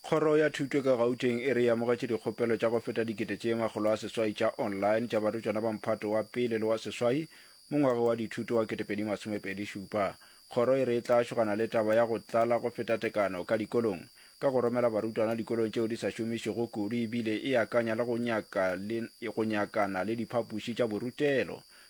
kgoro ya thuto ka gauteng e re e amogetše dikgopelo tša go feta dikete tše makgolo a seswai tša online tša barutwana ba mphato wa pele le wa seswai mo ngwago wa dithuto wa ketepedi masomepedi šupa kgoro e re e tla šogana le taba ya go tlala go feta tekano ka dikolong ka go romela barutwana dikolong tšeo di sa šomišego kudu ebile e akanya le go nyaka le go nyakana le diphapuši tša borutelo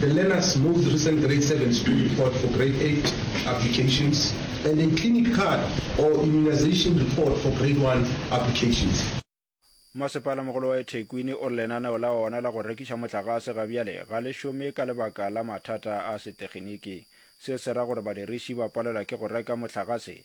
The learner's most recent Grade Seven School Report for Grade Eight applications and a clinic card or immunization report for Grade One applications. Masepalamogolo wa eThekwini o re lenaneo la ona la go rekiša motlagase ga bjale ga le šome ka lebaka la mathata a seteginiki. Se se ra gore badiriši ba palelwa ke go reka motlagase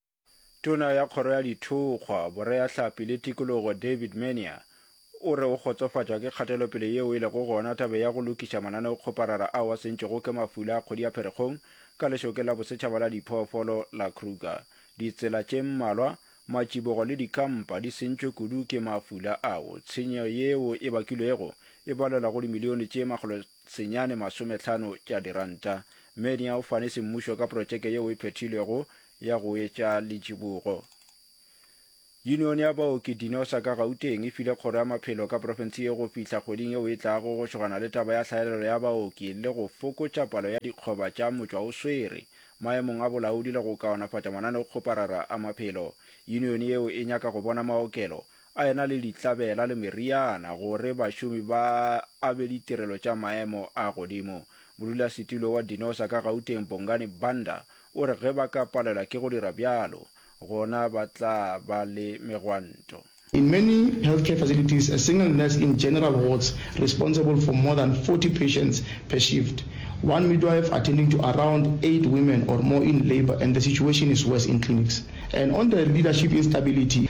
Tona ya Kgoro ya Dithokgwa, Boreahlapi le Tikologo David Mania o re o kgotsofatšwa ke kgatelopele yeo e lego gona tabe ya go lokiša mananeokgoparara ao a sentšwego ke mafula a kgodi ya Pherekgong ka lešokeng la bosetšhaba la diphoofolo la Kruger. Ditsela tše mmalwa, matšibogo le dikampa di sentšwe kudu ke mafula ao. Tshenyo yeo e bakilwego e balelwa go dimilione tše makgolo senyane masometlhano tša diranta. Menia o fane semmušo ka protšeke yeo e phethilwego ya go etša letšibogo. Yunione ya baoki Dinosa ka Gauteng e file Kgoro ya Maphelo ka profense ye go fihla kgweding yeo e tlago go šogana le taba ya tlhaelelo ya baoki le go fokotša palo ya dikgoba tša motšwaoswere maemong a bolaodi le go kaonafatša mananeokgoparara a maphelo. Yunione yeo e nyaka go bona maokelo a e na le dihlabela le meriana gore bašomi ba a be ditirelo tša maemo a godimo. Modulasetulo wa Dinosa ka Gauteng Bongani Banda o re ge ba ka palelwa ke go dira bjalo gona ba tla ba le megwanto. In many healthcare facilities, a single nurse in general wards responsible for more than 40 patients per shift, one midwife attending to around eight women or more in labour and the situation is worse in clinics. And on the leadership instability,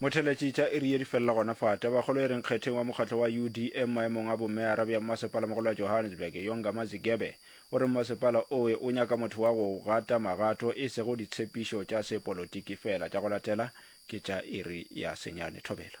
Motheletši tša iri ye di felela gona fa. Tabakgolo e reng kgetheng wa mokgatlo wa UDM maemong a bommeara bja mmasepalamogolo wa Johannesburg, Yonga Mazigebe, o re mmasepala oe o nyaka motho wa go gata magato e sego ditshepišo tša sepolotiki feela. Tša go latela ke tša iri ya senyane. Thobela.